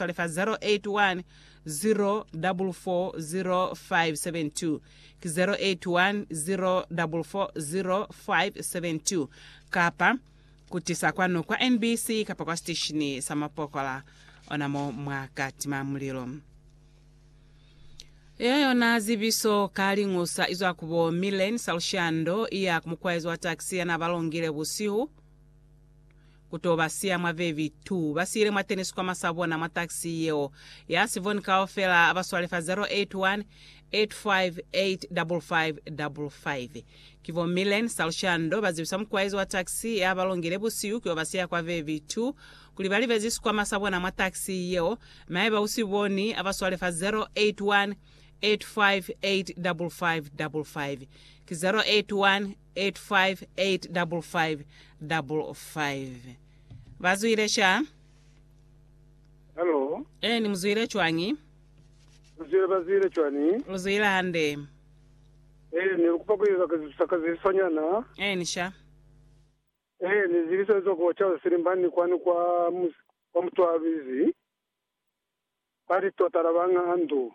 Telefa 0810440572 ki 0810440572 kapa ku tisa kwanu kwa NBC kapa kwa siteshini sa mapokola ona mo mwa ka tima mulilo. Iyo yona zibiso ka liñusa izwa ku bo Millen Salshando iya ku mukwaezi wa taxi yana ba longile busihu. Ku to ba siya mwa vevi tu ba siyile mwa teni sikwama sa bona mwa taxi yeo ya sivoni kaufela ba swale fa 0818585555. Ki bo Millen Salshando ba zibisa mukuwaizi wa taxi ya ba longile busihu ki yo ba siya kwa vevi tu kuli ba libezi sikwama sa bona mwa taxi yeo mi haiba u si boni a ba swale fa 0818585555. Ki 0818585555. 8585555. Ba zwile sha? Halo, Eni, mu zwile cwañi? lu zwile ba zwile cwani? Lu zwile hande. Eh, ne lu kupa ku eza kazisusa ka ziliso nyana. Eni sha? Eh, ni ziliso ezo ku ocaza silimbani kwani kwa mus, kwa mutwalwizi. Ba li tota la banga andu.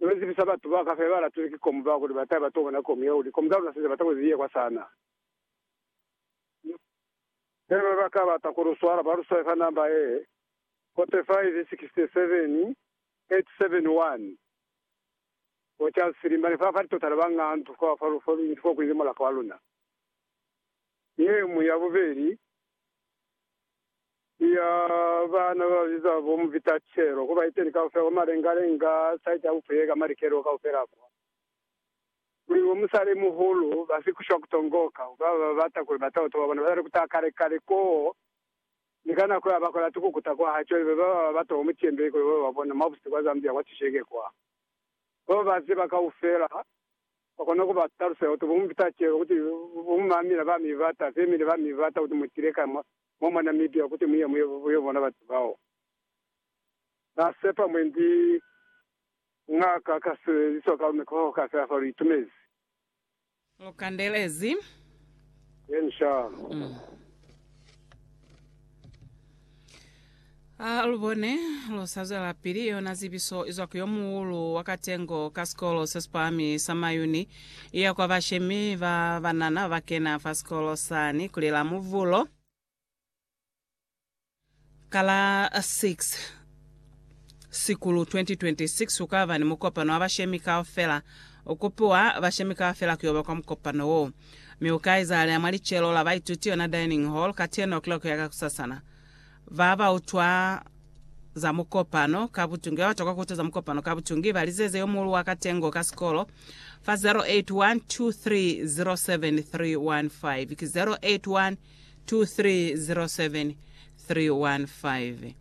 Ni ku zibisa batu ba ka fela ba latulwe ki komu ba kuli ba ta ba tokona komu ya kuli komu za luna se ze bata ku ziye kwa sana. Fela ba ba ka bata ku lu swala ba lu swale fa namba ye, 45 67 871. Bo Charles Filimba ne fa fa litotana ba Ngandu kwa fa lu fa lu inzi kwa kuli ni mulaka wa luna. Ye mu ya bubeli. Siya baana bababiza bo mu bitacelo, ku baiteni kaufela kwa malenga-lenga, saiti ya bupuye ka malikelo kaufela kwa Mulimo wa Musali Muhulu, ba si kushwa ku tongoka, ku baba ba bata kuli batoto ba bona ba tali kutaha kale-kale koo, ni ka nako ya ba kolati ku kuta kwa ha cwelele ba baba ba bata kwa mucembe kuli ba ba bona mwa busihu kwa Zambia kwa Cisheke kwa. Ba ba ba ziba kaufela ba kona ku ba talusela kuti bo mu bitacelo, kuti bo mu mamila ba mi bata, femili ba mi bata, kuti mu tile ka mwa Mwa mwa Namibia kuti muye muyo bona batu bao ba sepa mwendi ng'aka ka sebelizwa ka lume koho kaufela fa lu itumezi. Lu kandelezi. Yen sha. Ha lu bone lu sa zwelapili yona zibiso izwa ku yo muulu wa katengo ka sikolo se si pahami sa Mayuni iya kwa bashemi ba banana ba kena fa sikolo sani kuli la Muvulo ka la 6 Sikulu 2026 ku ka ba ni mukopano wa bashemi kaufela. U kupiwa bashemi kaufela ku yo ba kwa mukopano woo, mi u ka izahalea mwa licelo la baituti, yona dining hall, ka 10 o'clock ya kakusasana. Ba ba utwa za mukopano ka butungi ba ba tokwa ku utwa za mukopano ka butungi ba lizeze yo muulu wa katengo ka sikolo fa 0812307315 ki 0812307315.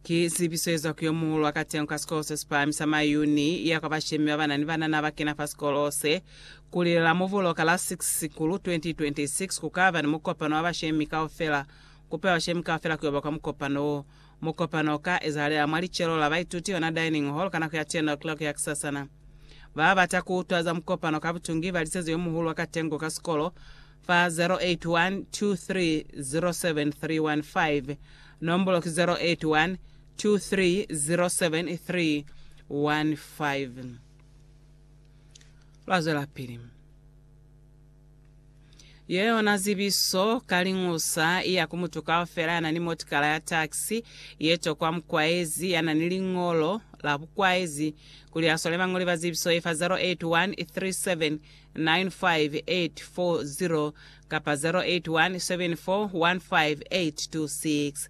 Ki zibiso ye zwa ku yo muulu wa katengo ka sikolo se si pahami sa Mayuni, iya kwa bashemi ba ba na ni banana ba kena fa sikolo se. Ku li Lamubulo ka la 6 Sikulu 2026, ku ka ba ni mukopano wa bashemi kaufela Kupelwa shame kaufela ku yo ba kwa mukopano wo. Mukopano o ka ezahalela mwa licelo la baituti ona dining hall ka nako ya 10 o'clock ya kisasana. Ba ba bata ku utwa za mukopano ka butungi ba liseze yo muhulu wa katengo ka sikolo fa 0812307315, nombolo ki 0812307315. Lwa zwelapili. Yeyona zibiso ka liñusa i ya ku mutu kaufela ya na ni motikala ya taxi ye tokwa mukwaezi ya na ni liñolo la bukwaezi kuli a swale bañoli ba zibiso ye fa 0813795840 kapa 0817415826.